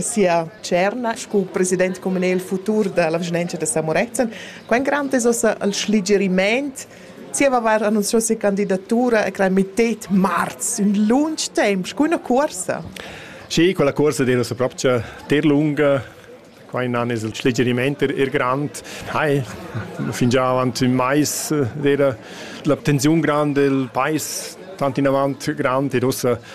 sia tscherna sco president communal futur dalla vischnanca da Samorezen. Quei grant es ossa al schligieriment zieva aver annunziau sia candidatura e creai mittet marz, ün lunch temp, scu üna cuorsa. Sì, quella cuorsa dei nossa propcha ter lunga, quai nan es il schligieriment er, er grand. Hai, fingià avant ün mais era l'abtenziun grand, il pais tant in avant grand ed ossa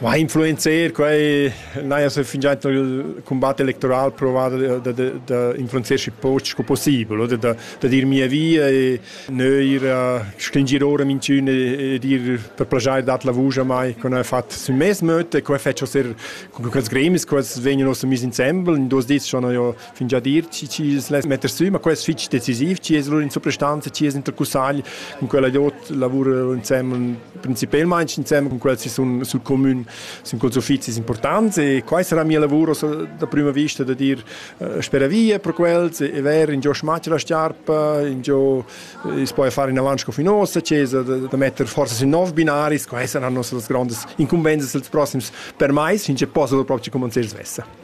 Ma ha influenzer quai n'haja se fingià il cumbat electoral provat da da da influenzeschi poch sco possibel oder da da dir mia via e neir stringir ora minchün e dir per plajair dat la vusch a mai co n'ha fat sün mes möd e quai fetscha ser co quels gremis quels vegnan ossa mis insembel in duos dis schon ho fingià dir chi es less metter sü, ma quest fich decisiv, chi es lur in suprastanza, chi es intercussagl cun quella dot lavura insemmel principelmaing insemmel cun quel si sun sul comün, sun culs uffizis importants e quai sarà mia lavur da prüma vista da dir eh, spera via per quels e ver in giò schmatsch la sciarpa, in giò eh, es poi fare in avanti sco finossa, chiesa da, da metter forse sün nov binaris, quai saranno las grandes incumbenzas dels prossims per mais, since possibile proprio come non si svessa.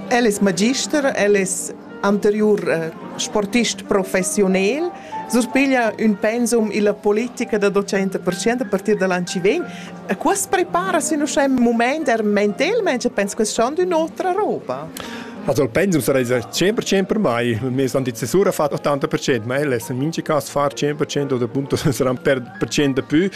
El es magister, el es anteriur eh, sportist professiunel, surpiglia ün pensum illa politica da 200% a partir da l'an chi vegn. E quas prepara sin uschè ün mumaint er mentelmaing e pens che schon d'ün'otra roba. Also il pensum sarà 100% per mai, mi sono di cesura fatto 80%, ma el è in minci caso far 100% o appunto sarà per percento più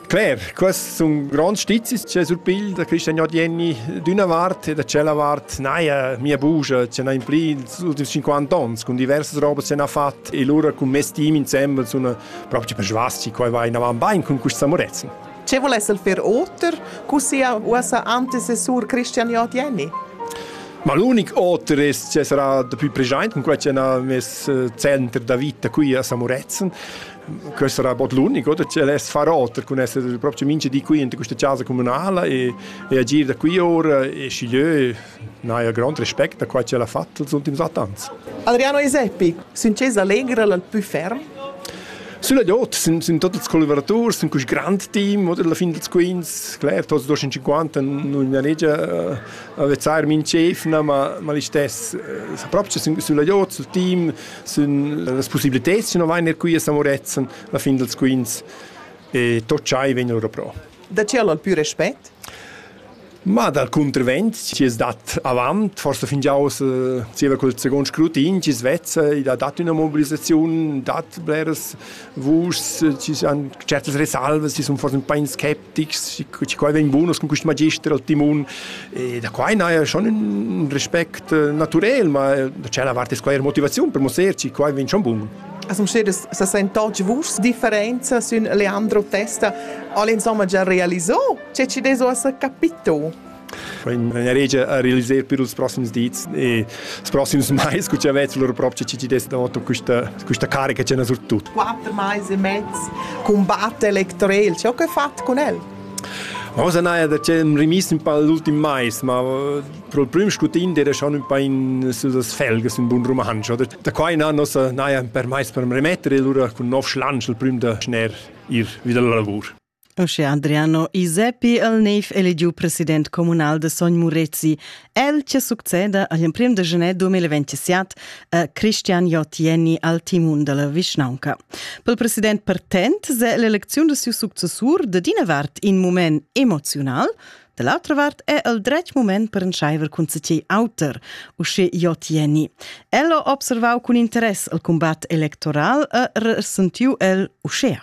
Claire, quests sun gronds stizis che surpigl da Christian Jodienni d'üna vart e da tschella vart naja mia bugia che n'ha impli ils ultims 50 ans cun diversas robas che n'ha fat e lura cun mes team insembel sun proprio per svasci qua vai inavan bain cun questa amorezza. Ce volesse il fer oter cu sia uossa antecessur Christian Jodienni? Ma l'unic oter è che sarà da più present cun quella che ha messo center da vita qui a Samuretzen. Questo era bod l'unico da che less far oter cun esser proprio mincha di qui in questa casa comunala e, e agir da qui ora e schiglieu n'haja grand respect a qua che l'ha fatto els ultims attans. Adriano Eseppi, sin Cesa Allegra l'al più ferm? Sulla Jot sind, sind tutti i collaboratori, sind questo grande team, oder alla fine dels Queens, klar, tots 250 non è negia avezzar min chef, ma ma li stess, proprio sulla Jot, sul team, Sun las possibiliteds chi nu vain eir qui a Samorezen la fin dals quints e tot schai vegn lura pro. Da chi al pü respet? Ma dal cuntervent chi es dat avant, forsa fingià oz zieva quel seguond scrutin, chi es vezza, id ha dat üna mobilisaziun, dat bleras Vus ci san certas resalvas, ci sun forse un po' skeptics, ci quai vegn bunos con quist magister al timon e da quai n'haja schon ün respect natürel, ma da tschella vart es quai eir motivaziun per musser ci quai vegn schon bun. As musseres sa sentotg vus differenza sün Leandro Testa al insomma già realiso? Cioè ci deso as capito? Vegn eregia a realiser per ils proxims dis e ils proxims mais cu cha vezz lur propcha CCDS d'auto questa questa carica ch'ena surtut. Quatter mais e mezz combatte electorel, ciò che fat cun el? Rosa Naja da c'è rimis un po' l'ultim mais, ma pro il prim scutin era schon un po' in sus felges un bun romansch. Da, da qua in an nossa Naja per mais per remettere e lura cun nov schlansch il prim da schner ir wieder la lavur. Uschè Adriano Iseppi el nev eligiu president communal de Sogn Murezi. El che succeda agl emprem de genè 2027 a Christian Jotieni al timun della vischnaunca. Pel president partent se l'eleziun de siu successur de d'ina vart in moment emoziunal, de l'altra vart è el dretg moment per entscheiver cun cei auter, usce Jotieni. El ho observau cun interess al combat electoral e resentiu el uschea.